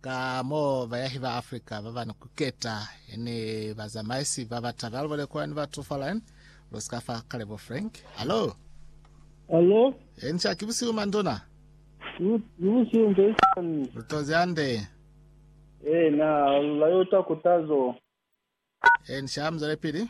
Ka mo, bayahi ba Afrika ba ba ni kuketa ni bazamaisi ba ba taba lubole kula ni batu fa line. Lu si ka fa Kalebo Frank. Alo! Alo, Enca, ki busihu manduna. lu- lubusihu nte sani. Lu tozi hande. Eh, na, lu la yo ta kutazo. Enca, mu zwele pili.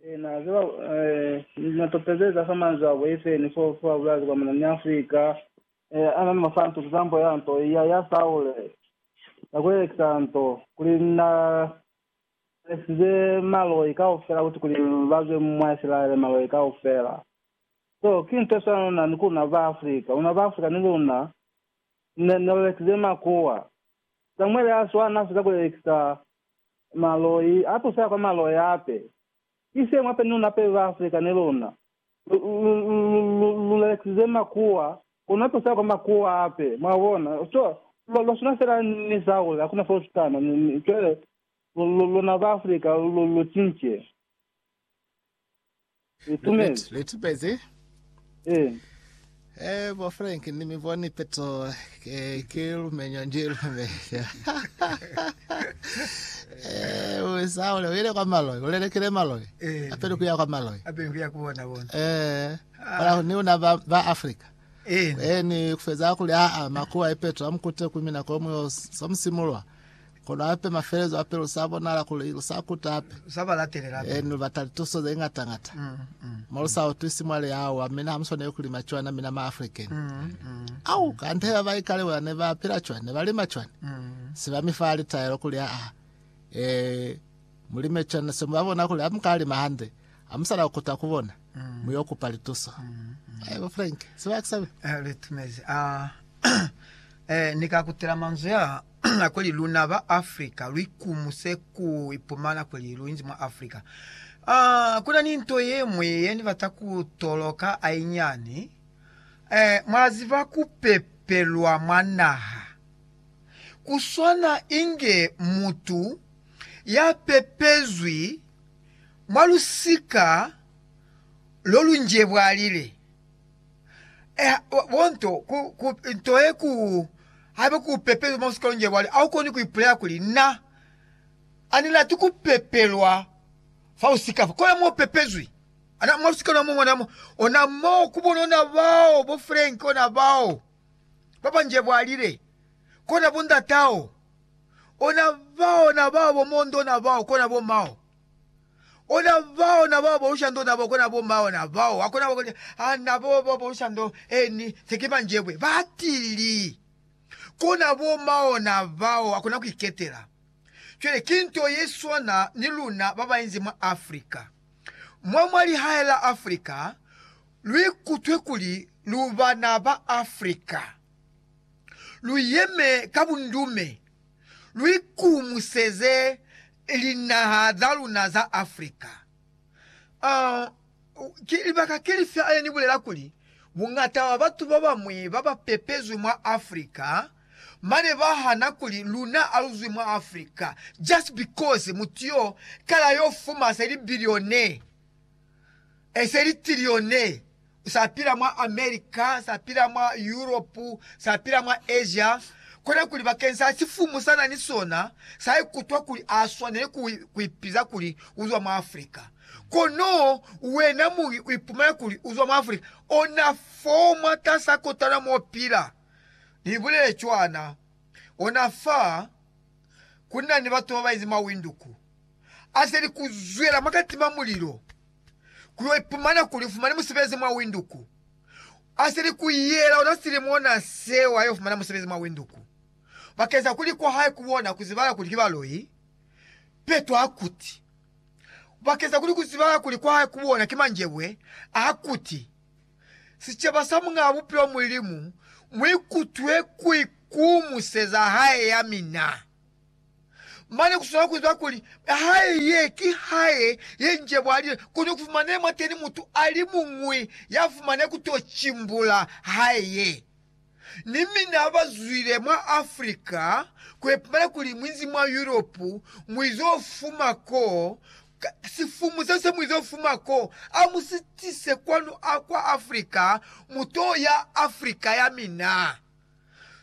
Ee, na ziba, ee, na topezeza fa manzwi abo, efeni fo fe ba bulezi kwa muna ni Afrika, ee, ana ni masantu, kizambo ya nto, ya, ya Saule, ya kuelekisa nto, kuli na lesize maloi kaufela kuti kuli ba zwe mwa Isilaele, maloi kaufela. So, ki nto ye swana na, ni ku luna ba Afrika, luna ba Afrika ni luna, ne, ne lelekisize makuwa. Samuele a swana, na feza ku lelekisa Maloi a tusa kwa maloi hape. Ki se mwa penunu hape ba Afrika ni luna. Lu, lu, lu, lu, lu lelekisize makuwa, kono a tusa kwa makuwa hape. Mwa bona? Cwale, lwa, lwa swana fela ni Saule, hakuna fo lu shutana. Ni, ni, cwale, lu, lu, luna ba Afrika, lu, lu cince. Li tumezi. Li tumezi. Eh. Eh, bo Frank, ni mi boni peto ke, ke lumenyo nje lumenya. eh, usa ule uile kwa maloi, ulelekele maloi. Eh. Apele kuya kwa maloi. Apele kuya kuona bona. Eh. Ah. Ni una ba, ba Africa. Eh. Eh, ni kufeza kuli a a makuwa ipeto amkute kumina komwe somsimulwa. Kono hape mafelezo a pelo sa bonala kuli lu sa kuta hape. Sa ba latelela hape. Ee, lu bata lituso ze ngata-ngata. Mo lu sa utwisi mwa liaowa, mina ha mu swaneli ku lima cwana, mina ma African. Au, kante ba ba ikale bona ne ba pila cwana, ne ba lima cwana. Se ba mi fa litaelo kuli, Aa, ee, mu lime cwana. Se mu ba bona kuli ha mu ka lima hande, ha mu sa na ku kuta ku bona, mu yo kupa lituso. Haibo, Frank, se ba ki sabe. Ee, lu itumezi. Aa, ee, ni ka kutela manzwi aa. Na kuli luna ba Africa lu ikumuse ku ipumana kuli lu inzi mwa Africa. Uh, kuna ni nto ye ñwi ye ni bata ku toloka hainyani. Eh, mwa ziba ku pepelwa mwa naha ku swana inge mutu ya pepezwi mwa lusika lo lu njebwalile. Eh, bonto, ku, ku, nto ye ku, habe ku pepelwa mo sikolong je bwale, au koni ku ipulela kuli na ani lati ku pepelwa fa usika fa. Kola mo pepezwi. Ana mwa lusika lwa mungwana mo, ona mo ku bonona bao bo Frank, ona bao ba banje bwalile, kona bo ndatao, ona bao, na bao bo Mondo, na bao, kona bo mao. Ona bao na bao bolusha ndo na bo kona bo mao na bao wa kona bo kona ha na bo bo bolusha ndo eni se ki manjebwe ba tili kona bo mao na bao wa kona ku iketela. Cwale ki nto ye swana ni luna ba ba inzi mwa Africa. Mwa mwa lihae la Africa lu ikutwe kuli lu bana ba Africa. Lu yeme ka bundume. lwikumuseze linaha za luna za Africa. Ki libaka ki lifi hane ni bulela kuli buñata bwa batu ba bamwi ba ba pepezwi mwa Africa bane ba hana kuli luna ha lu zwi mwa Africa just because mutu yo kala yo fuma se libilione? eseli tilione sa pila mwa America, sa pila mwa Europe, sa pila mwa Asia, kona kuli bakeni sa sifumu sa na ni sona, sa ikutwa kuli a swaneli ku, ku ipiza kuli u zwa mwa Africa. Kono wena muñi u ipumana kuli u zwa mwa Africa, ona fo mwatasa kotana mo pila. Ni bulele cwana, ona fa ku na ni batu ba ba inzi mawinduku, azeli kuzwela mwakatima mulilo kuyo ipumana kuli ufumani musebezi mwa Windhoek. Azeli kuyela ona silimo na seo ayo fumana musebezi mwa Windhoek. Bakeza kuli kwahae kubona kuzibala kuli kibaloi, Peto akuti, Bakeza kuli kuzibala kuli kwahae kubona kimanjebwe, akuti, Sicaba sa Muñaa Bupilo Mulimu muikutwe kuikumuseza hae yamina. Mane kuswela kuziba kuli hae ye ki hae ye njebwalile, kono kufumanile mwateni mutu alimuñwi yafumane kuto cimbula hae ye. Ni mina abazwile mwa Africa kuipumela kuli muizi mwa Europe muizo fuma ko, sifumu sese muizo fuma ko, amusitise kwanu akwa Africa, muto ya Africa yamina.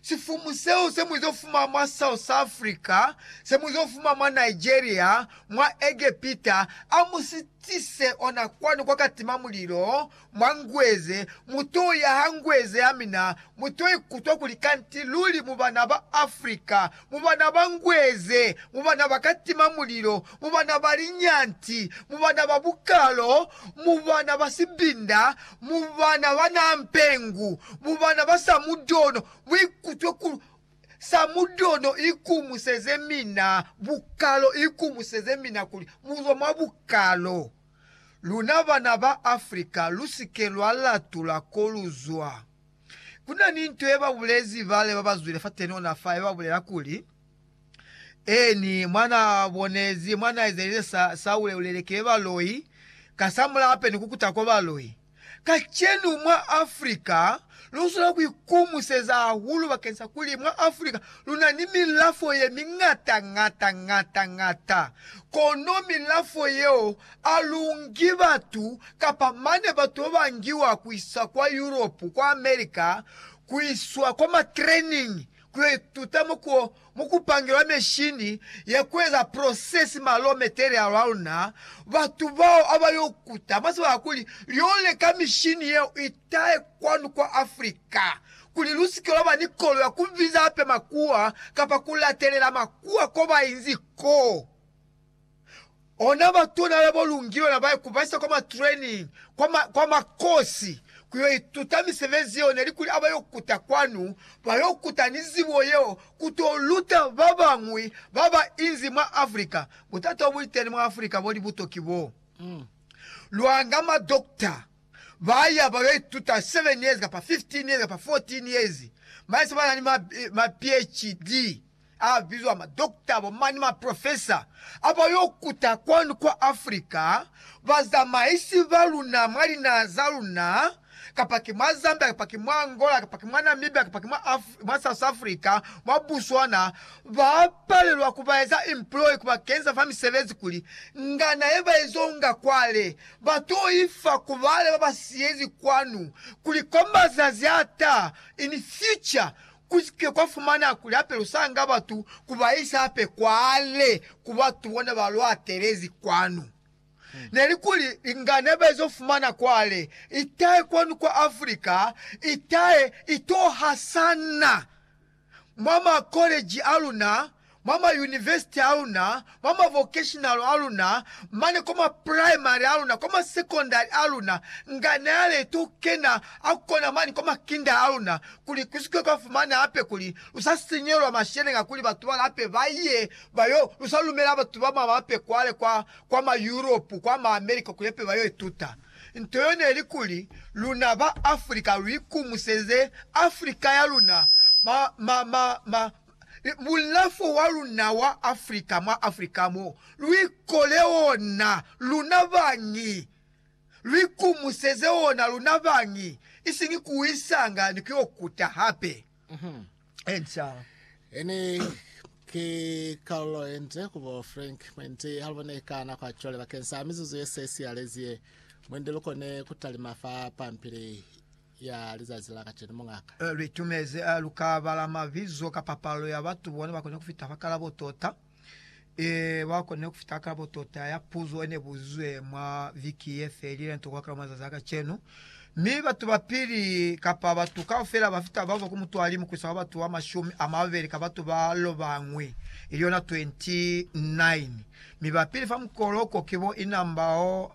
Sifumu seo se mu zo fuma mwa South Africa, se mu zo fuma mwa Nigeria, mwa Egepita, a mu si tise ona kwanu kwa ka tima mulilo mwa ngweze, mu to yaha ngweze ya mina, mu to ikutwa kuli kanti luli mu bana ba Africa, mu bana ba ngweze, mu bana ba katima mulilo, mu bana ba linyanti, mu bana ba bukalo, mu bana ba sibinda, mu bana ba na mpengu, mu bana ba samudono, mu ikutwe ku samudono ikumuseze mina, bukalo ikumuseze mina kuli muzwa mwa bukalo. Luna bana ba Africa lusike lwa latula koluzwa. Ku na ni nto ye ba bulezi bale ba ba zwile fateni ona fa ye ba bulela kuli, Ee, ni mwa na bonezi, mwa na ezelize sa, sa uleulele ki baloi, ka sa mulape ni ku kuta kwa baloi. Kacenu mwa Africa, lu swanela ku ikumuseza hahulu bakeni sa kuli mwa Africa lu na ni milafo ye miñata, ñata, ñata, ñata. Kono milafo yeo alungi batu kapa mane batu babangiwa kuisa kwa Europe, kwa America, kuiswa kwa ma training kuyo ituta muko mukupangilwa meshini ya kueza process ma raw material aluna, batu bao abayo kuta mwa sibaka kuli lyo leka mishini yeo itahe kwanu kwa Africa kuli lusike lwaba ni kolo ya kubiza hape makuwa kapa kulatelela makuwa kobainzi ko. Ona batuna labo lungilwe na bae kubaisa kwa matraining kwa ma, kwa makosi kuyo ituta misebenzi yeo neli kuli abayo kuta kwanu bayo kuta ni zibo yeo kuto luta babañwi baba inzi mwa Africa. Butata obuli teni mwa Africa bo libuto ki bo lwanga ma doctor baya bayo ituta 7 years kapa 15 years kapa 14 years mane se banani ma, ma PHD. A bizwa ma doctor bo mani ma professor aba yo kuta kwanu kwa Africa, ba zamaisi ba luna mwa linaha za luna, kapa ki mwa Zambia kapa ki mwa Angola kapa ki mwa Namibia kapa ki mwa Af mwa South Africa mwa Botswana, ba palelwa ku ba eza employ ku ba kenza fa misebezi kuli ngana ye ba izo nga kwale ba to ifa ku bale ba ba siyezi kwanu kuli kwa mazazi a ta, in future, Ku si ke kwa fumaneha kuli hape lu sanga batu ku ba isa hape kwale ku batu bona ba lu atelezi kwanu. Ne li kuli li nga ne ba izo fumana kwale itahe kwanu kwa Africa, itahe i to hasana mwa makoleji a luna, mwa mayunivesiti a luna, mwa mavokeshinalo a luna, mane kwa mapraimari a luna, kwa masekondari a luna, nga ne a leti ku kena a kona mane kwa makinda a luna, kuli ku si ke kwa fumana hape kuli lu sa sinyelwa masheleña kuli batu ba lape ba ye ba yo lu sa lumela batu ba mwa mape kwale kwa, kwa ma Yuropu, kwa ma America kuli hape ba yo ituta. Nto yo ne li kuli luna ba Africa lu ikumuseze Africa ya luna, ma, ma, ma, ma, bulafo wa luna wa Afrika, mwa Afrika mo lwi kole ona luna bañi, lwi kumuseze ona luna bañi, isiñi ku isanga ni ku yo kuta hape. Enca. Eni ki kalulo ye nde ku bo Frank mwendi ha lu bone ka nako ya cwale bakeng sa mizuzu ye se siyalezi ye mwende lu kone ku talima fa pampili ya lizazi la kacenu, mungaka. Litumezi a lu ka bala mabizo kapa palo ya batu bona ba kone kufita fa kalabo tota. E, ba kone kufita ka kalabo tota ya puzo ene buzizwe mwa viki ye felile nto kwa kalabo mazazi a kacenu. Mi batu ba pili, kapa batu kaufela ba fita babo ku mutualimu kuisa kwa batu ba mashumi a mabeli ka batu ba lobangwi, ili yona 29. Mi ba pili fa mukoloko ki bo Inambao